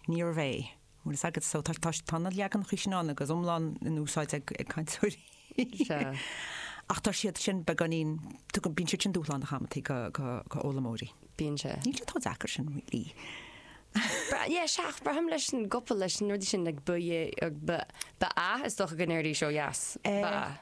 Níorbh é. Bhfuil fhios agat, so tá na leaganacha sin ann agus iomlán in úsáid ag cainteoirí. Sea. Ach tá siad sin beagáinín, tugann, bíonn siad sin dúshlánach amanntaí go d'fhoghlaimeoirí. Bíonn sé. Níl sé chomh deacair sin really. Yeah, sea, ach braithim leis an gcopail, leis an rud sin like ba, yeah, ba ea is dócha go ndéarfaidís ó dheas, ba ea.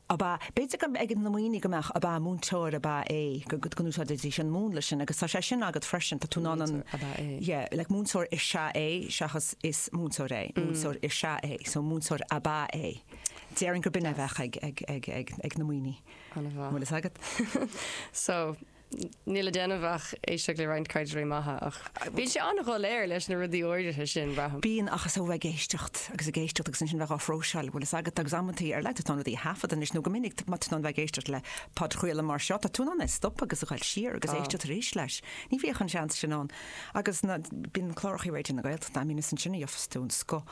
ab ea, b'fhéidir go mbeadh ag na Muimhnigh go mbeadh ab ea múinteoir ab ea é, go n-úsáidfidís an múnla sin agus tá sé sin agat freisin, tá tú in ann an, Múinteoir ab ea é. yeah, like múinteoir is ea é seachas is múinteoir é, múinteoir is ea é, so múinteoir ab ea é. Déarfainn gurb in é a bheadh ag na Muimhnigh. Ab ea. An bhfuil fhios agat? So, Níl le déanamh ach éisteacht le roinnt cainteoirí maithe ach bíonn sé an-dhoiléir leis na rudaí áirithe sin, braithim. Bíonn, ach is ó bheith ag éisteacht agus ag éisteacht agus ansin bheith á phróiseáil an bhfuil fhios agat agus amantaí ar leith tá tú in ann rudaí a thaifeadadh anois nó go minic má tá tú in ann bheith ag éisteacht le podchraoladh mar seo tá tú in ann é stopadh agus a ghoil siar agus éisteacht arís leis. Ní bhíodh an seans sin ann agus bíonn cláracha Raidió na Gaeltachta ann agus sin an áit a gheofas tú an scoth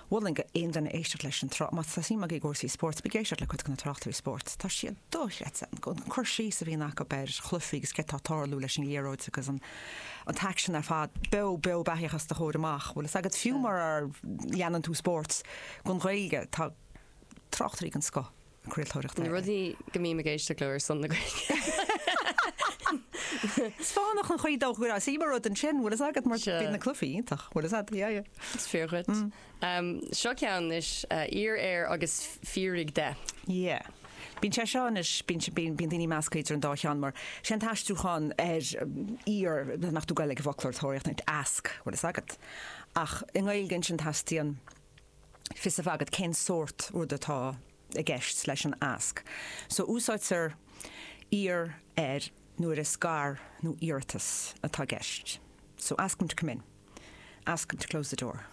mholfainn d'aon duine éisteacht leis an tsraith. Má tá suim agaibh i gcúrsaí spóirt, bíg ag éisteacht le cuid de na tráchtairí spóirt, tá siad dochreidte, an cur síos a bhíonn acu ar chluichí agus céard atá ag tarlú leis an liathróid agus an t-aicsean ar fad, beo beo beathaíoch os do chomhair amach. Bhfuil fhios agat, fiú mura leanann tú spóirt, don Ghaeilge, tá tráchtairí den scoth. craoltóireachta eile. Na rudaí go mbím ag éisteacht leo ar son na Gaeilge. Is fánach an chaoi dócha go raibh sí mar rud ansin, bhfuil fhios agat, mar Sea. bhí na cluichí iontach, bhfuil fhios a'd, yeah, yeah. Is fíor dhuit. Seo ceann anois, Iarr air agus fiafraigh de. Yeah. Bíonn sé seo anois, bíonn si- bíonn bíonn daoine measctha idir an dá cheann mar sé an t-aistriúchán ar iarr, má chuardaíonn tú Gaeilge i bhfoclóirtóireacht, ask, bhfuil fhios agat. Ach i nGaeilge ansin teastaíonn fios a bheith agat cén sórt rud atá i gceist leis an ask. So úsáidtear iarr air nuair is gar nó iarratas atá i gceist. So ask him to come in. Ask him to close the door.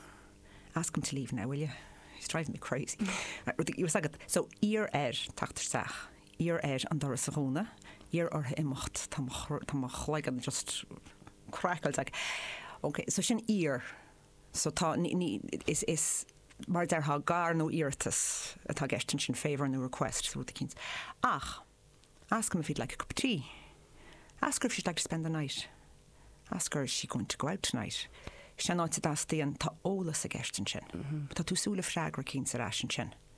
Ask him to leave now, will you? He's driving me crazy. Bhfuil a fhios agat. So iarr air teacht isteach. Iarr air an doras a dhúnadh. Iarr orthu imeacht. Tá mo chloigeann just craiceáilte agat. Okay, so sin iarr. So tá, ní, ní, is, is, mar a déarfá, gar nó iarratas atá i gceist ansin, favour nó request, rud eicínt. Ach, ask him if he'd like a cup of tea. Ask her if she'd like to spend the night. Ask her is she going to go out tonight. Sin an áit a dteastaíonn, tá eolas i gceist ansin. Tá tú ag súil le freagra eicínt ar ais ansin.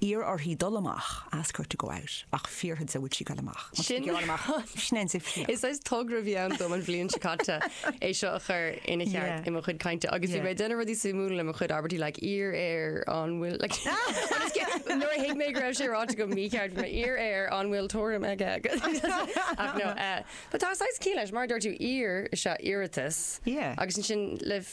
Iarr uirthi dul amach, ask her to go out, ach fiafraigh di an bhfuil sí ag dul amach. Má tá sí ag dul amach, sin é an suíomh céanna. Is saghas togra a bhí ann dom an bhliain seo caite é seo a chur ina cheart i mo chuid cainte agus bhí mé ag déanamh rudaí suimiúla le mo chuid abairtí like iarr air an bhfuil like an is cinnte nuair a thuig mé go raibh sé ráite go mícheart, bhí mé iarr air an bhfuil tuairim aige ach nó eh but tá saghas cinn leis mar a dúirt tú iarr is ea iarratas agus ansin le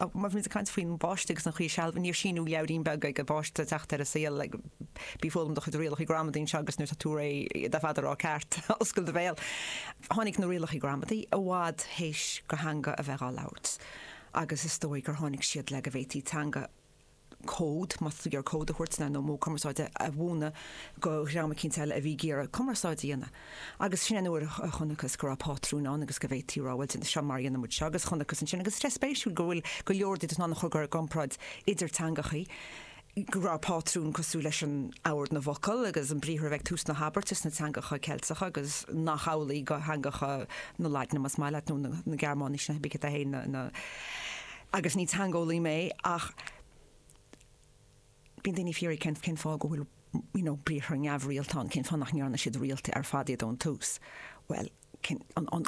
Ach má bhímid ag caint faoin bpáiste agus an chaoi a sealbh, níor síniú leabhairín beag ag an bpáiste ag teacht ar an saol, Bí ag foghlaim do chuid rialacha gramadaí anseo agus nuair atá tú réidh le iad ar fad a rá ceart, oscail do bhéal. Tháinig na rialacha gramadaí i bhfad théis go theanga a bheith dhá labhairt agus is dóigh gur tháinig siad le go bhféadfaí teanga a cód, más féidir cód a thabhairt nó modh cumarsáide a mhúineadh go dhream eicínt eile a bhí ag iarraidh cumarsáid a dhéanamh. Agus sin an uair a chonacthas go raibh pátrún ann agus go bhféadfaí a rá, bhuel, seo mar a dhéanann muid seo agus chonacthas ansin, agus is é an rud spéisiúil go bhfuil go leor de, d'fhonn a chur i gcomparáid idir teangachaí, go raibh pátrún cosúil leis an ord na bhfocal agus an briathar a bheith ag tús na habairte sna teangacha Ceilteacha agus nach amhlaidh go theangacha na Laidne, más maith leat, nó na Gearmáinise, na hOibicida féin, na. agus ní teangeolaí mé ach bíonn daoine ag fiafraí cén cén fáth go bhfuil you know briathra neamhrialta ann, cén fáth nach ndearna siad rialta ar fad iad ón tús. Bhuel cén an an